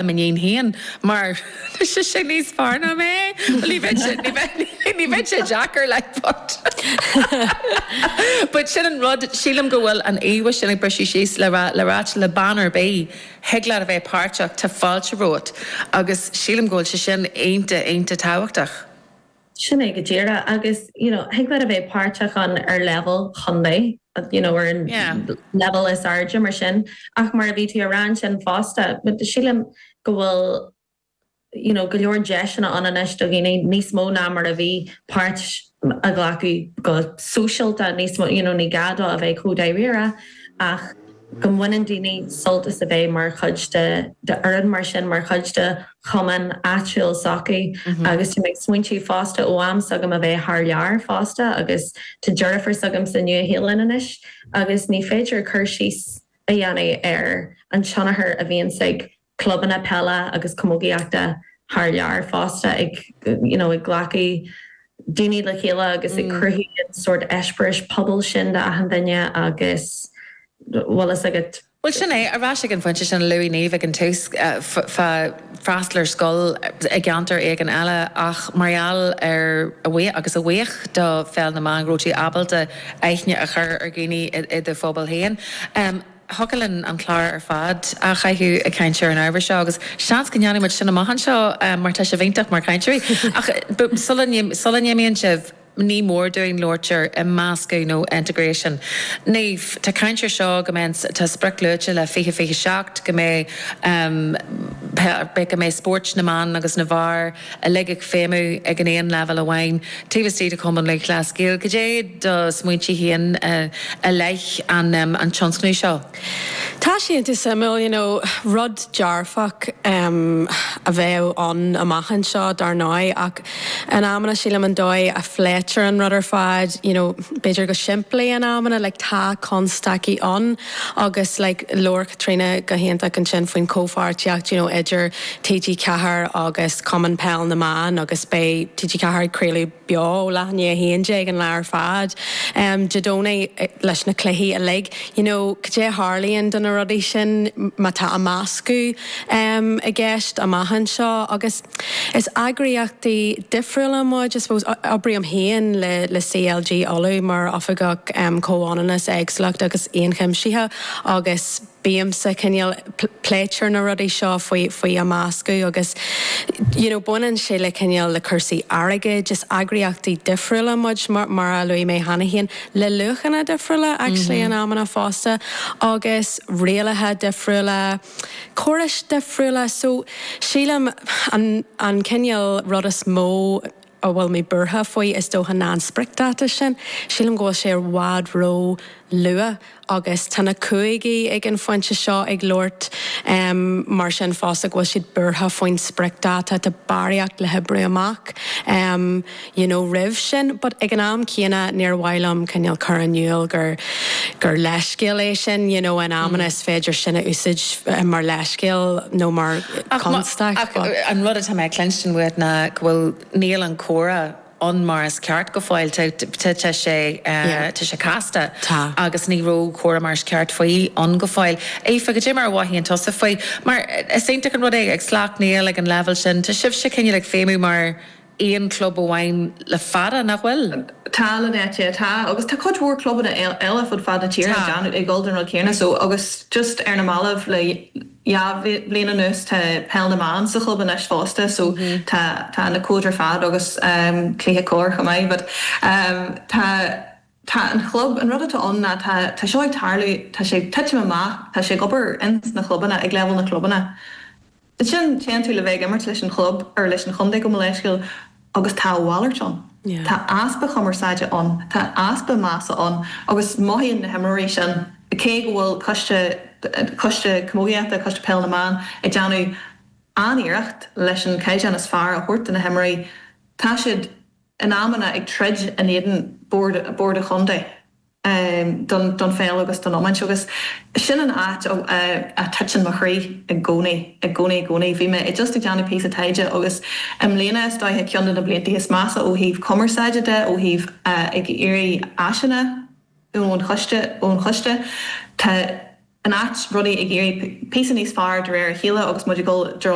le m'iníon féin mar tá sise níos fearr ná mé, bhuel ní bheidh sé, ní bheidh, ní bheidh sé deacair like but but sin an rud, sílim go bhfuil an íomha sin ag briseadh síos le rá, le rá le rá le bean ar bith thig leat a bheith páirteach, tá fáilte romhat agus sílim go bhfuil sé sin iontach, iontach tábhachtach. Sin é go díreadh agus you know thig leat a bheith páirteach ann ar leibhéal chontae you know ar an leibhéal is airde mar sin ach mar a bhí tú a rá ansin fosta but sílim go bhfuil you know go leor deiseanna ann anois do dhaoine níos mó ná mar a bhí páirt a ghlacadh go sóisialta níos mó you know ní gá dóibh a bheith chomh dáiríre ach go mbaineann daoine sult as a bheith mar chuid de d'fhoireann mar sin, mar chuid de chumann áitiúil sochaí, agus tá mé ag smaointiú fosta ó am s'agam a bheith thar lear fosta agus tá deirfiúr s'agam sa Nua-Shéalainn anois agus ní féidir cur síos a dhéanamh ar an tionchar a bhíonns ag clubanna peile agus camógaíochta thar lear fosta ag you know ag glacadh daoine le chéile agus ag cruthú an sórt eispéiris pobail sin do achan duine agus bhfuil fhios agat. Bhuel sin é, ar ais ag an phointe sin a luaigh Niamh ag an tús fá freastal ar scoil i gceantar éigin eile ach mar gheall ar a bhuí, agus a bhuí do Pheil na mBan go raibh tú ábalta aithne a chur ar dhaoine i do phobal féin. Thiocfadh linn an clár ar fad á chaitheamh ag caint ar an ábhar seo, agus seans go ndéanfaidh muid sin amach anseo, mar tá sibh iontach mar chainteoirí. Ach sula n-imíonn sibh, ní mór dúinn labhairt ar imeascadh, nó integration. Niamh, tá caint air seo go mbeidh, tá sprioc luaite le 2027 go mbeidh, beidh, go mbeidh spóirt na mban agus na bhfear, uilig ag feidhmiú ag an aon leibhéal amháin taobh istigh de Chumann Lúthchleas Gael. Cad é do smaointe féin i leith an tionscnaimh seo? Tá sé iontach suimiúil, you know, rud dearfach a bheadh ann amach anseo dar ndóigh ach in amanna sílim an dóigh a phléitear an rud ar fad, you know, b'fhéidir go simplí in amanna, like tá constaicí ann. Agus like labhair Caitríona go hiontach ansin faoin chomhpháirtíocht you know idir TG4 agus Cumann Peil na mBan agus beidh TG4 ag craoladh beo ó leath i ndiaidh a haon déag an lá ar fad em Dé Domhnaigh leis na cluichí uilig you know cad é a tharlaíonn do na rudaí sin má tá imeascadh em i gceist amach anseo agus Is eagraíochtaí difriúla muid, I suppose oibrím féin le CLG Uladh mar Oifigeach Comhionannas, Éagsúlacht agus Ionchuimsithe agus bímse cineál, pléitear na rudaí seo faoi imeascadh agus you know baineann sé le cineál le cúrsaí airgid, is eagraíochtaí difriúla muid mar a luaigh mé cheana féin, le luachanna difriúla actually in amanna fosta agus rialacha difriúla. córais dhifriúla. So, sílim, an, an cineál rud is mó a bhfuil mé buartha faoi, is dócha, ná an spriocdháta sin. Sílim go bhfuil sé i bhfad róluath agus tá na cúigí ag an phointe seo ag labhairt, em, mar sin fosta, go bhfuil siad buartha faoin spriocdháta, tá barraíocht le hoibriú amach, em, you know roimh sin but ag an am céanna níor mhaith liom cineál cur in iúl gur gur leithscéal é sin you know in amanna is féidir sin a úsáid mar leithscéal nó mar chonstaic but. An rud atá mé a chluinstin uait ná go bhfuil níl an comhrá ann mar is ceart go fóill tá tá tá sé yeah tá sé casta tá agus ní raibh comhrá mar is ceart faoi ann go fóill. Aoife, goidé mar a mhothaíonn tusa faoi mar is iontach an rud é ag Sleacht Néill ag an leibhéal sin tá sibhse cineál ag feidhmiú mar aon chlub amháin le fada, nach bhfuil? Tá, leabhaite, tá. Agus tá cuid mhór clubanna eile fud fad na tíre ag déanamh, ag dul don rud céanna so. Agus just ar na mallaibh, le dhá bhliain anuas, tá Peil na mBan sa chlub anois fosta so tá, tá na cóid ar fad agus ehm cluiche corr chomh maith but ehm tá, tá an chlub, an rud atá ann ná tá, tá seo ag tarlú, tá sé ag titim amach, tá sé ag obair ins na chlubanna, ag leibhéal na chlubanna. Ansin, téann tú le bheith ag imirt leis an chlub, or leis an chontae gabh mo leithscéal, agus tá a mhalairt ann. Tá easpa cumarsáide ann, tá easpa measa ann agus mothaíonn na himreoirí sin, cé go bhfuil coiste, Coiste Camógaíochta, Coiste Peil na mBan, ag déanamh an-iarracht leis an caighdeán is fearr a thabhairt do na himreoirí, tá siad in amanna ag troid in éadan bord an chontae. don don pheil agus don iomáint agus sin an áit a a titeann mo chroí i gcónaí, i gcónaí, i gcónaí. Bhí mé just ag déanamh píosa taighde agus i mbliana is dóiche ceann de na blianta is measa ó thaobh cumarsáide de, ó thaobh ag iarraidh áiseanna de ón choiste. Tá anois, rudaí ag iarraidh píosa níos fearr de réir a chéile agus muid ag dul i dtreo